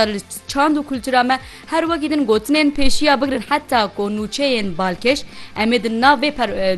Li çand û kultura me her wekî din gotinên pêşî ya bigirin heta ku nûçeyên balkêş em ê di nav vê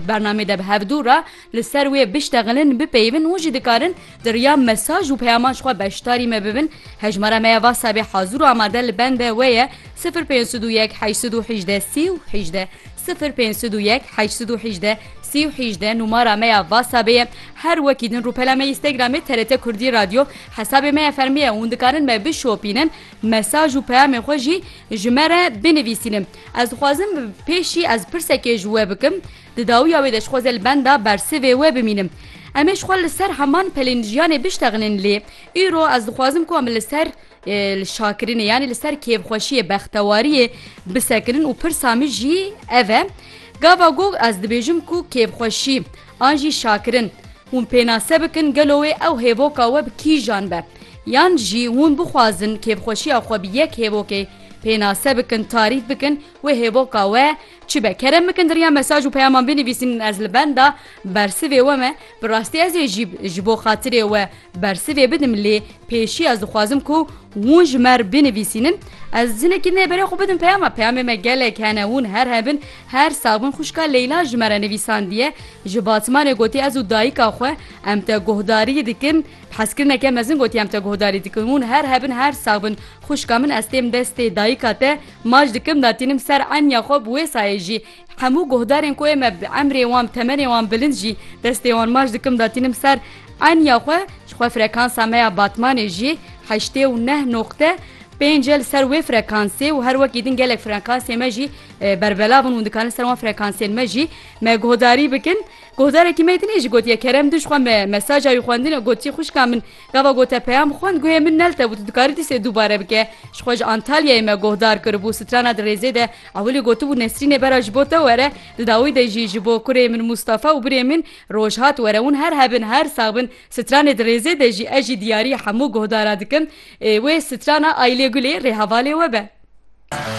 bernameyê de bi hevdû re li ser wê biştexilin, bipeyivin û jî dikarin di riya mesaj û peyaman ji xwe beşdarî me bibin. Hejmara me ya Whatsappê hazir û amade li bende we ye, sifir pênc sed û yek heşt sed û hejdeh sî û hejdeh, sifir pênc sed û yek heşt sed û hejdeh sî û hejdeh numara me ya Whatsappê ye. Her wekî din rûpela me Instagramê TRT Kurdî Radyo. Hesabê me ya fermî ye hûn dikarin me bişopînin, mesaj û peyamên xwe jî ji me re binivîsînin. Ez dixwazim pêşî ez pirsekê ji we bikim, di dawiya wê de ji xwe zêl benda bersivê we bimînim. Em ê ji xwe li ser heman pelên jiyanê biştexînin lê îro ez dixwazim ku em li ser li şakirinê yanî li ser kêfxweşiyê, bextewariyê bisekinin û pirsa min jî ev e. Gava gog ez dibêjim ku kêfxweşî An jî şakirin. Hûn pênase bikin gelo wê ew hêvoka we bi kîjan be. Yan jî hûn bixwazin kêfxweşiya xwe bi yek hêvokê pênase bikin, tarîf bikin, wê hêvoka we çi be. Kerem bikin di riya mesaj û peyaman binivîsin, ez li benda bersivê we me, bi rastî ez ê jî ji bo xatirê we, Bersivê bidim lê pêşî ez dixwazim ku hûn ji me re binivîsînin. Ez jinekî nê berê xwe bidim peyama. Peyamê me gelek hene hûn her hebin her sax bin xwişka Leyla ji me re nivîsandiye. Ji Batmanê gotiye ez û dayika xwe em te guhdarî dikin. Hezkirineke mezin gotiye em te guhdarî dikin. Hûn her hebin her sax bin xwişka min ez têm destê dayika te mac dikim datînim ser enya xwe bi wê sayê jî Hemû guhdarên ku ê me bi emrê wan bi temenê wan bilind jî destê wan maç dikim datînim ser enya xwe ji xwe frekansa me ya Batmanê jî heştê û neh noqte pênc e li ser wê frekansê û her wekî din gelek frekansê me jî berbelav in hûn dikarin ser wan frekansên me jî me guhdarî bikin guhdarekî me din ê jî gotiye kerem din ji xwe me mesaja wî xwendine gotiye xwişka min Gava got te peyam xwend guhê min nelte bû tu dikarî dîsê dubare bike. Ji xwe ji Antalyayê me guhdar kiribû strana di rêzê de ewilî gotibû Nesrînê bera ji bo te were di dawî de jî ji bo kurê min Mustafa û birê min Rojhat were hûn her hebin her sax bin stranê di rêzê de jî ez jî diyarî hemû guhdara dikim wê strana Aylê Gulê rê hevalê we be.